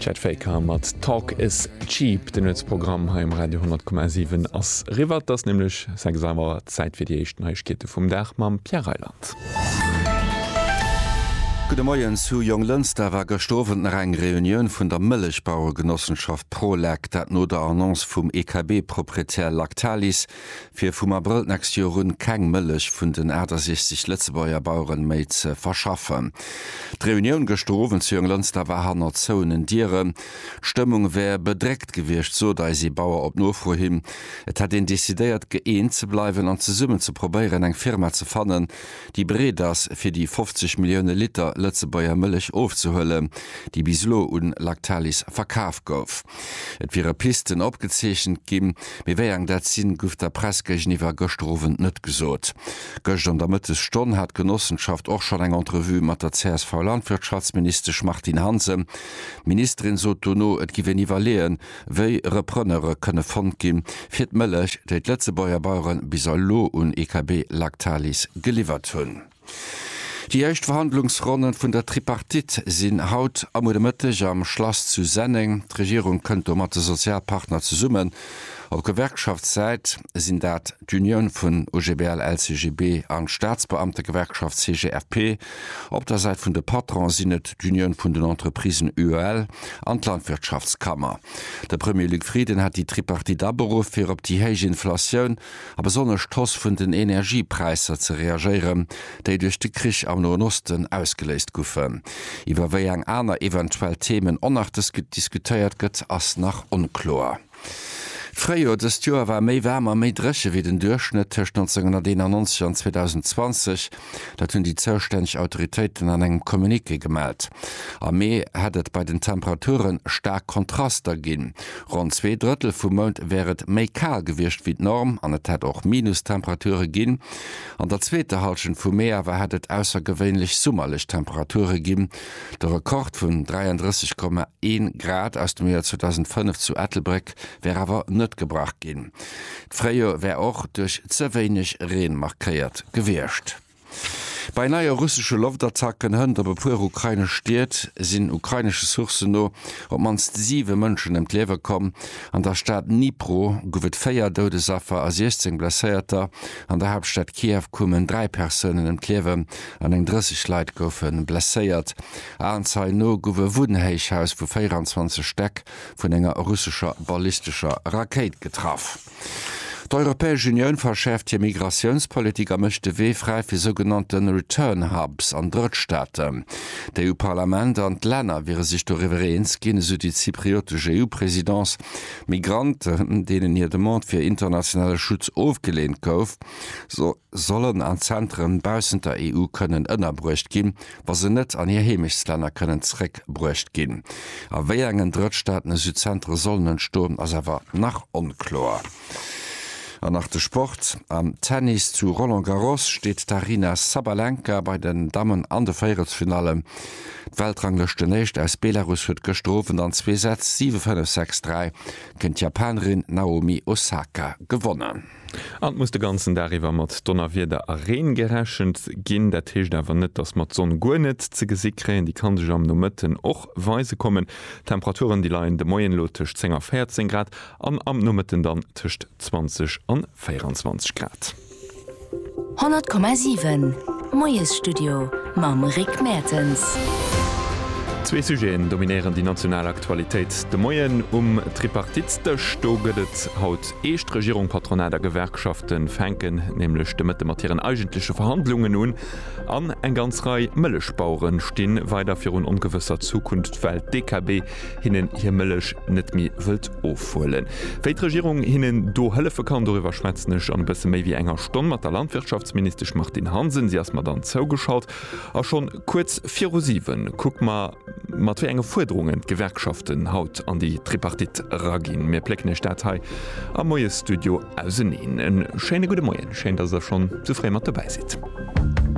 Chet Faker mat Talk is cheap. De Nuetsprogramm hei um Radio 10,7 ass eriwwer. Et ass nämlech 6 Auer, Zäit fir déi éischt Neiegkeete vum Dag mam Pierre Reyland. Gudde Moien zu Jonglënster war gëscht Owend nach eng Reunioun vun der Mëllechbaueregenossenschaft Prolec, dat no der Annonce vum EKB-Proprietär Lactalis fir vum Abrëll d'nächst Joer un keng Mëllech vun den 68 Lëtzebuerger Baueren méi ze verschaffen. D'Reunioun gëschter Owend zu Jonglënster war hanner zouenen Dieren. D'Stëmmung wär bedréckt gewiescht, sot eis ee Bauer op Nofro hin. Et hätt een decidéiert, gëeent ze bleiwen an zesummen ze probéieren, eng Firma ze fannen, déi bereet ass, fir déi 50 Millioune Liter Lëtzebuerger Mëllech ofzehuelen, déi bis elo un Lactalis verkaf gouf. Et wiere Pisten opgezeechent ginn, mee wéi eng dat sinn, guff der Press géigeniwwer gëschter Owend net gesot. Gëscht an der Mëttesstonn hat d'Genossenschaft och schonn eng Entrevue mat der CSV-Landwirtschaftsministesch Martine Hansen. D'Ministerin sot dono, et giff een iwwerleeën, wéi Repreneure kënne fonnt ginn, fir d'Mëllech, déi d'Lëtzebuerger Bauere bis elo un EKB Lactalis geliwwert hunn. Déi éischt Verhandlungsronnen vun der Tripartite sinn haut a muer de Mëtteg am Schlass zu Senneng. D'Regierung kënnt do mat de Sozialpartner zesummen. Op Gewerkschaftssäit sinn dat d'Unioun vun OGBL, LCGB an d'Staatsbeamtegewerkschaft CGFP. Op der Säit vun de Patronen sinn et d'Unioun vun den Entreprisen UEL an d'Landwirtschaftskammer. De Premier Luc Frieden hat déi Tripartite aberuff fir op déi héich Inflatioun a besonnesch d'Hoss vun den Energiepräisser ze reagéieren, déi duerch de Krich am Noen Osten ausgeléist goufen. Iwwer wéi eng aner eventuell Themen onnachtes diskutéiert gëtt, ass nach onkloer. D'Fréijoer dëst Joer war méi waarm a méi dréche wéi den Duerchschnëtt tëscht 1991 an 2020. Dat hunn déi zoustänneg Autoritéiten an engem Communiqué gemellt. Am Mee hätt et bei den Temperature staark Kontraster ginn. Ronn zwee Drëttel vum Mount wär et méi kal gewiescht wéi d'Norm an et hätt och Minustemperature ginn. An der zweeter Hallschent vum Mee awer hätt et aussergewéinlech summerlech Temperature ginn. De Rekord vun 33,1 Grad aus dem Joer 2005 zu Ettelbréck wär awer net gebrach ginn. D'Fréijoer wär och duerch ze wéineg Reen markéiert gewiescht. Bei neie russesche Loftattacken hënt op e puer ukrainesch Stied sinn ukrainesche Sourcen no op d'mannst siwe Mënschen ëm d'Liewe komm. An der Stad Dnipro gouf et véier Doudesaffer a 16 Blesséierter. An der Haaptstad Kiew koumen dräi Persounen ëm d'Liewen an eng 30 Leit goufe blesséiert. Aenzeien no gouf e Wunnhéichhaus vu 24 Stäck vun enger russescher ballistescher Rakéit getraff. D'Europäesch Unioun verschäerft hir Migratiounspolitik a mécht de Wee fräi fir sougenannte Return Hubs an Drëttstaaten. D'EU-Parlament an d'Länner wiere sech doriwwer eens ginn, esou déi zypriotesch EU-Presidence. Migranten, deenen hir Demande fir internationale Schutz ofgeleent gouf, sollen an Zentren baussent der EU kënnen ënnerbruecht ginn, wa se net an hir Heemechtstlänner kënnen zréckbruecht ginn. A wéi engen Drëttstaaten esou Zentre sollen entstoen, ass awer nach onkloer. An nach de Sport, Am Tennis zu Roland Garros steet d'Aryna Sabalenka bei den Dammen an de Véierelsfinallen. D'Weltranglëschtenéischt aus Belarus huet gëschter Owend an zwee Sätz, 7, 5, 6, 3, géint d'Japanerin Naomi Osaka gewonnen. An et muss de ganzen Dag iwwer mat Donnerwieder a Reen gerechent ginn. Dat heescht awer net, dass mer d'Sonn guer net ze gesi kréien. Déi kann sech am Nomëtten och weise kommen. D'Temperaturen, déi leien de Moien elo tëscht 10 a 14 Grad an am Nomëtten dann tëscht 20 an 24 Grad. 100,7 Moiesstudio mam Rick Mertens. Zwee Sujeten dominéieren déi national Aktualitéit de Moien um Tripartitsdësch. Do gëtt et haut Eescht, Regierung, Patronat a Gewerkschafte fänken nämlech de Mëtte mat hiren eigentleche Verhandlungen un an eng ganz Rei Mëllechbauere sti weider virun ongewësser Zukunft, well d'DKB hinnen hir Mëllech net méi wëllt ofhuelen. Wéi d'Regierung hinnen do hëllefe kann, doriwwer schwätzen ech an e bësse méi wéi enger Stonn mat der Landwirtschaftsministesch Martine Hansen. Si ass mer dann zougeschalt a schonn kuerz viru siwen kucke mer, Mat wéi enge Fuerderungen d'Gewerkschaften haut an déi Tripartite eraginn, mir plécken Iech dat hei am Moiesstudio auseneen. E schéine gudde Moien, schéin, datt Der schonn sou fréi mat dobäi sidd.